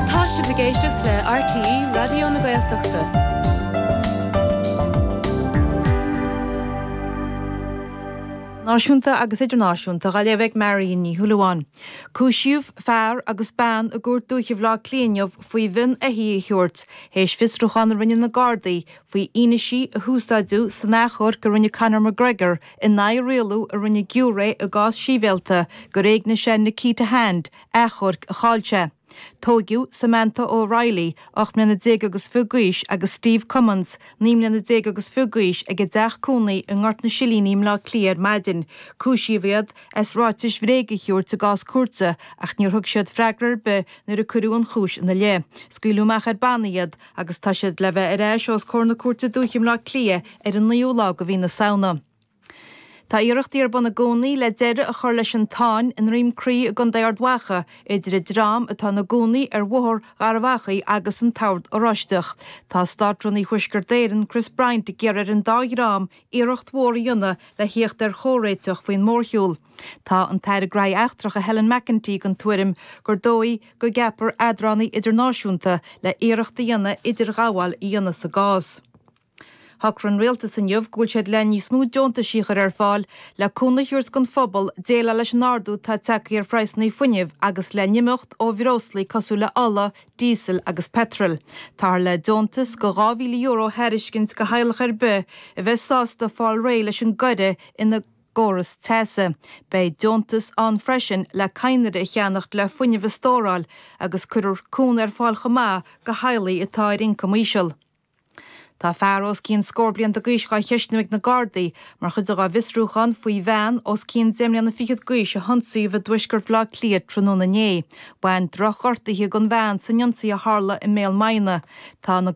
Tá sibh ag éisteacht le RTÉ Raidió na Gaeltachta. Nuacht Náisiúnta agus Idirnáisiúnta dá léamh ag Marion Ní Shúilleabháin. Cúisíodh fear agus bean i gCúirt Dúiche Bhaile Átha Cliath inniu faoi mhionn éithigh a thabhairt théis fiosrúchán a rinne na Gardaí faoi fhianaise a húsáideadh san achomharc a rinne Conor McGregor in aghaidh rialú a rinne giúiré i gcás sibhialta gur éignigh sé Nikita Hand, achomharc a chaill sé. Tóigeadh Samantha O'Reilly, ocht mbliana déag agus fiche d'aois, agus Steve Cummins, naoi mbliana déag agus fiche d'aois, ag a dteach cónaí i nGort na Silíní i mBleá Cliath ar maidin. Cúisíodh iad as ráitis bhréige a thabhairt i gcás cúirte, ach níor thug siad freagra ar bith nuair a cuireadh an chúis ina leith. Scaoileadh amach ar bannaí iad agus tá siad le bheith ar ais os comhair na Cúirte Dúiche i mBleá Cliath ar an naoú lá de mhí na Samhna. Tá iarrachtaí ar bun i gcónaí le deireadh a chur leis an tsáinn i nDroim Crí i gContae Ard Mhacha idir an dream atá ina gcónaí ar Bhóthar Gharbh Achaidh agus an tOrd Oráisteach. Tá Státrúnaí Thuaisceart Éireann, Chris Bryant, ag iarraidh ar an dá dhream iarracht mhór a dhéanamh le theacht ar chomhréiteach faoin mórshiúl. Tá an tAire Gnóthaí Eachtracha Helen McEntee den tuairim gur dóigh go gceapfar eadránaí idirnáisiúnta le hiarracht a dhéanamh idirghabháil a dhéanamh sa gcás. Shocraigh an Rialtas inniu go bhfuil siad le níos mó deontaisí a chur ar fáil le cúnamh a thabhairt don phobal déileáil leis an ardú atá tagtha ar phraghsanna fuinnimh agus le n-imeacht ó bhreoslaí cosúil le ola, díosal agus peitreal. Táthar le deontas go €2,000 a thairiscint go theaghlach ar bith a bheidh sásta fáil réidh leis an gcoire ina gcóras teasa. Beidh deontas ann freisin le cadhnraí a cheannacht le fuinneamh a stóráil agus cuirfear cúnamh ar fáil chomh maith go theaghlaigh atá ar ioncam íseal. Tá fear os cionn scór blianta d'aois dhá cheistiú ag na Gardaí mar chuid dhá bhfiosrúchán faoi bhean os cionn deich mbliana fichead d'aois a hionsaíodh i dtuaisceart Bhaile Átha Cliath tráthnóna inné. Bhain drochghortuithe don bhean san ionsaí a tharla i mBaile Munna. Tá na.